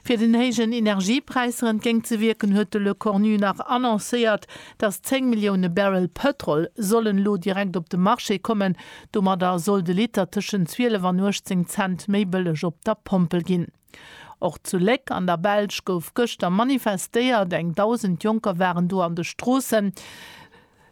Fir den héijen Energiepräisser entgéint ze wierken, huet de Lecornu nach annoncéiert, datt 10 Millioune Barrel Pëtrol sollen elo direkt op de Marché kommen. Domadder soll de Liter tëschent 12 an 18 Cent méi bëlleg op der Pompel ginn. Och zu Léck an der Belsch gouf gëschter manifestéiert. Eng 1.000 Jonker waren do an de Stroossen.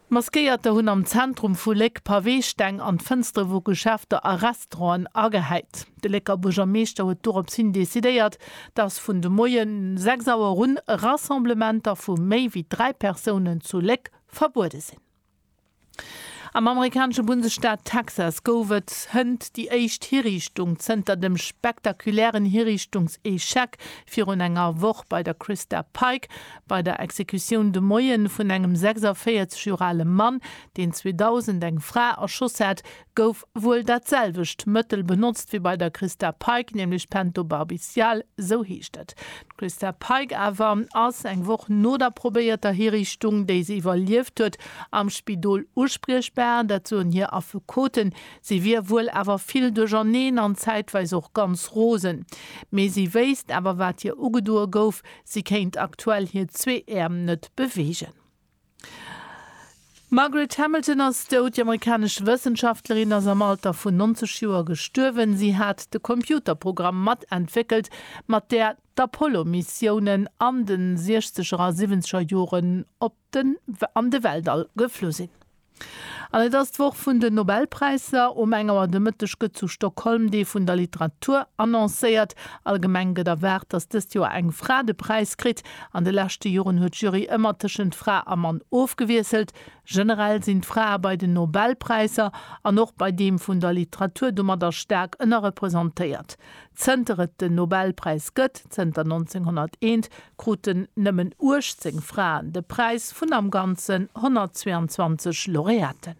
Maskéierter hunn am Zentrum vu Léck Paweesteng an d'Fënstere vu Geschäfter a Restauranten agehäit. De Lécker Buergermeeschter huet doropshin decidéiert, datt vun de Moie 6 Auer un Rassemblementer vu méi wéi 3 Persounen zu Léck verbuede sinn. Am amerikanesche Bundesstaat Texas gouf et hënt déi éischt Hiriichtung zënter dem spektakulären Hiriichtungs-Echec virun enger Woch bei der Christa Pike. Bei der Exekutioun de Moien vun engem 46 Joer ale Mann, deen 2000 eng Fra erschoss hat, gouf wuel dat selwecht Mëttel benotzt wéi bei der Christa Pike, nämlech Pentobarbital, sou heescht et. D'Christa Pike awer ass eng Woch no der probéierter Hiriichtung, déi se iwwerlieft huet, am Spidol uspriechbar. Dat soen hir Affekoten. Si wier wuel awer vill duercherneen an zäitweis och ganz rosen. Mee si wéisst awer, wat hir ugedoe gouf. Si kéint aktuell hir zwee Äerm net beweegen. D'Margaret Hamilton ass dout. Déi amerikanesch Wëssenschaftlerin ass am Alter vun 90 Joer gestuerwen. Si hat de Computerprogramm mat entwéckelt, mat där d'Apollo-Missiounen an de Siechzeger a Siwwenzeger Joren op den an de Weltall geflu sinn. An et ass d'Woch vun den Nobelpräisser. Um eng Auer de Mëtteg gëtt zu Stockholm Dee vun der Literatur annoncéiert. Allgemeng gëtt erwaart, datt dëst Joer eng Fra de Präis kritt. An de leschte Joren huet d'Jury ëmmer tëschent Fra a Mann ofgewiesselt. Generell sinn d'Frae bei den Nobelpräisser an och bei deem vun der Literatur domadder staark ënnerrepresentéiert. Zënter et den Nobelpräis gëtt, zënter 1901, kruten nëmmen 18 Fraen de Präis vun am Ganzen 122 Laureaten.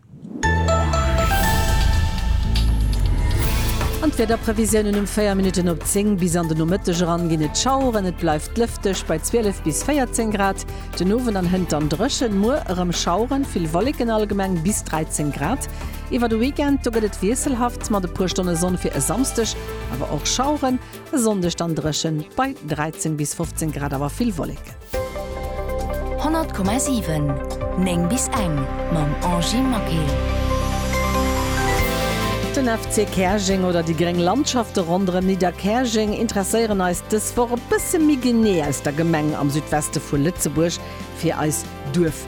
An d'Wiederprevisiounen, Um 4 Minutten op 10 bis an den Nomëtteg eran ginn et Schaueren, et bleift lëfteg bei 12 bis 14 Grad. Den Owend an hënt dann drëchen, muer erëm Schaueren, vill Wolleken, allgemeng bis 13 Grad. Iwwer de Weekend do gëtt et wiesselhaft mat e puer Stonne Sonn fir e Samsdeg, awer och Schaueren. E Sonndeg dann dréchen bei 13 bis 15 Grad, awer vill Wolleken. 100,7 9 bis eng mam Angy Maquil. Den FC Käerjeng oder déi gréng Landschafte ronderëm Nidderkäerjeng interesséieren eis dës Woch e bësse méi genee aus der Gemeng am Südweste vu Lëtzebuerg fir eis Duerf.